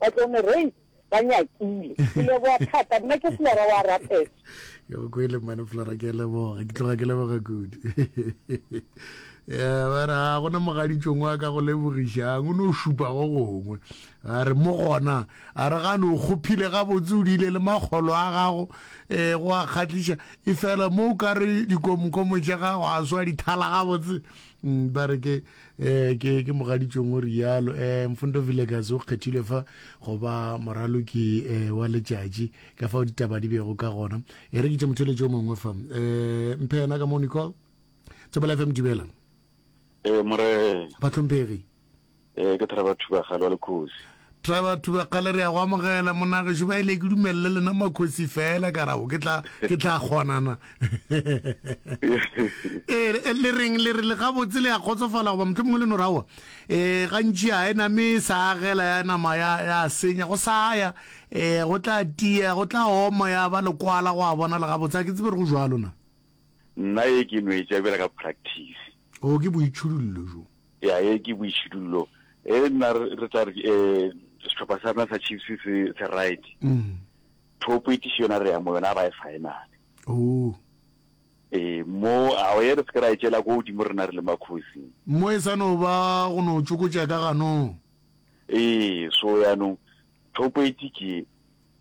Batloomerei ba nyakile. Ke leboga thata. Nna ke Flora wa Rapet. Ke go kwele mmane Flora ke leboga. Ke tloga ke leboga kudu. Eh, ba re ga ah, gona mogaditšong wa ka go lebogišang o ne o šupa go gongwe a re mo gona a re gane o kgophile gabotse o diile le makgolo a gago um go a kgatlhiša e fela mo o ka re dikomkomo tša gago a swa dithala gabotse mm, ba re ke eh ke ke mogaditšong o rialo eh mfundo villages o kgethilwe fa go ba moraloki eh wa letšatši ka fa ditaba di bego ka gona e re ke tše motheletši o mongwe fa eh mphe yena ka mo nicol tsebela fm dumela eh more batlhomphegi eh ke thara batho ba gale wa lekhosi Tla batho ba kgale re ya go amogela monagešu ba ile ke dumelele lena makhosi fela ka rago ke tla ke tla kgonana ee eh, le reng le re le gabotse le ya kgotsofala goba motho mongwe le no rawa ee eh, gantši ya e name sa agela ya nama ya ya senya go sa ya ee eh, go tla tia go tla oma ya ba lekwala go a bona le gabotse a ke tsebe re go jwalo na nna e ke nwetša bjela ka practice Oo, ke boitšhidullo bjo. Ya, ee, ke boitšhidullo. Ee, nna re tla re ke, um, sehlopha sa rena sa Chiefs se, se right. Mm. Thopo e tiše yona re ya mo yona ga ba e finale. Oo. Ee, mo, ao ye re se ke ra e tšela ko godimo rena re le makhosi. Mo e sa no ba go no tšokotša ka ganong. Ee, so yanong, Thokweetši ke,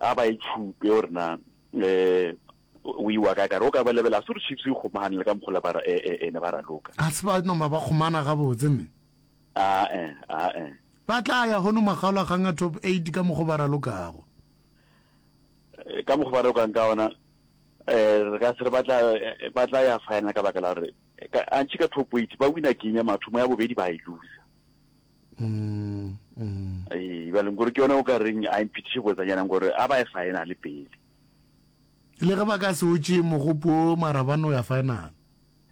A ba e tšhupe gore na um o iwa kae. Ka re o ka ba lebela, a se gore Chiefs e kgomagane le ka mokgwa o le ba ne ba raloka. A se ba noma ba kgomana gabotse, mme. A-e, a-e. Ba tla ya hono makgaolakgang a Top Eight ka mokgwa o ba ralokago. Ka mokgwa o ba ralokang ka ona, um re ka se re ba tla, ba tla ya final ka baka la gore, antši ka Top Eight ba wina game ya mathomo, ya bobedi ba e loser. mm, mm. ee ba leng gore ke yone o ka reng a imphethiše boetsanyanang gore a ba e faena le pele le ge ba ka se otše mogopo marabano ya final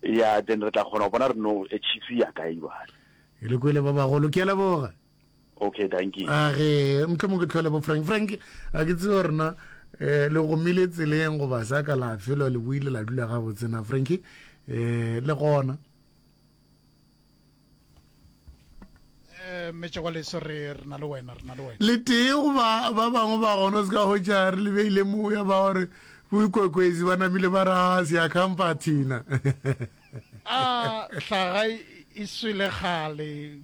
ya then re tla kgona go bona re no e chiefs ya kae bale e le kwele ba bagolo ke leboga okay thank you a ge mtlho mo ke tlhole bo frank frank a ke tseo rena eh le go mile tseleng go ba sa ka la felo le buile la dula ga botsena frank eh le gona Eh, metšegwaleso re re na le wena re na le wena le tee goba ba bangwe ba gona se ka hotša re lebeile moya ba gore boikwekwezi ba namile ba ra seakhampa thina a ah, hlaga e swele kgale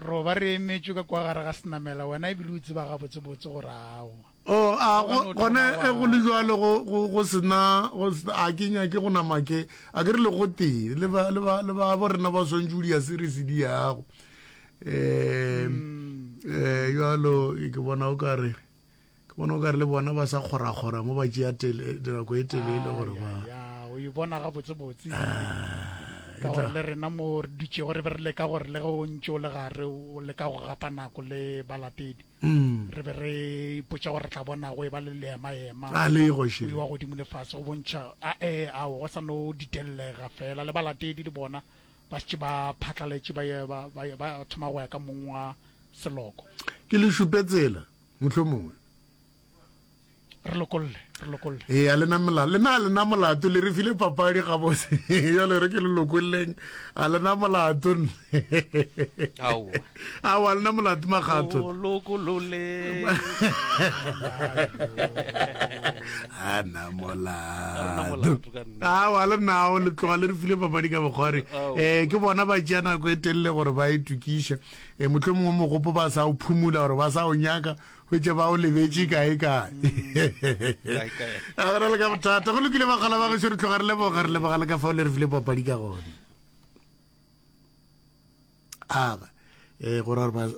roba re emetšwe ka kwa gare ga senamela wena ebile o tseba gabotsebotse gore awa Oo, a, go, gona ge go le bjalo, go, go, go se na, go se na, a ke nyake go nama ke, a ke re le gotee, le ba, le ba, le ba bo rena ba swantše o di ya seresedi yago. Eh, eh, bjalo, ke bona o ka re, ke bona o ka re le bona ba sa kgorakgora mo ba tšea tele, dinako e telele gore ba. Ya, o e bona ga botsebotse. Ah, ka gore le rena mo re dutšego re be re leka gore le ge o ntše o le gare, o leka go gapa nako le balatedi. re be re ipotša gore re tla bonago e ba le leemaema a le goše wa godimo le fase go bontšha ae ao go sa no ditellega fela le balatedi le bona ba šetše ba phatlaletše ba thoma go ya ka mong wa seloko ke le šupe tsela mohlomongwe re lokolle re lokolle ee a lena molato lena a lena molato le re file papadi gabotse jalo re ke le lokolleng a lena molato ao a lena molato magato ana molato ao a lenao le tloga le re file papadi ka bokgware um eh, ke bona ba tšea nako e telele gore ba e tukiša um eh, motlho mongwe mogopo ba sa o phumula gore ba sa o nyaka hwetša ba o lebetše kaekae a go na le ka bothata go lokile bakgala ba gešo re tloga re leboga re leboga le ka fao le re file papadi ka gone aba um gore gore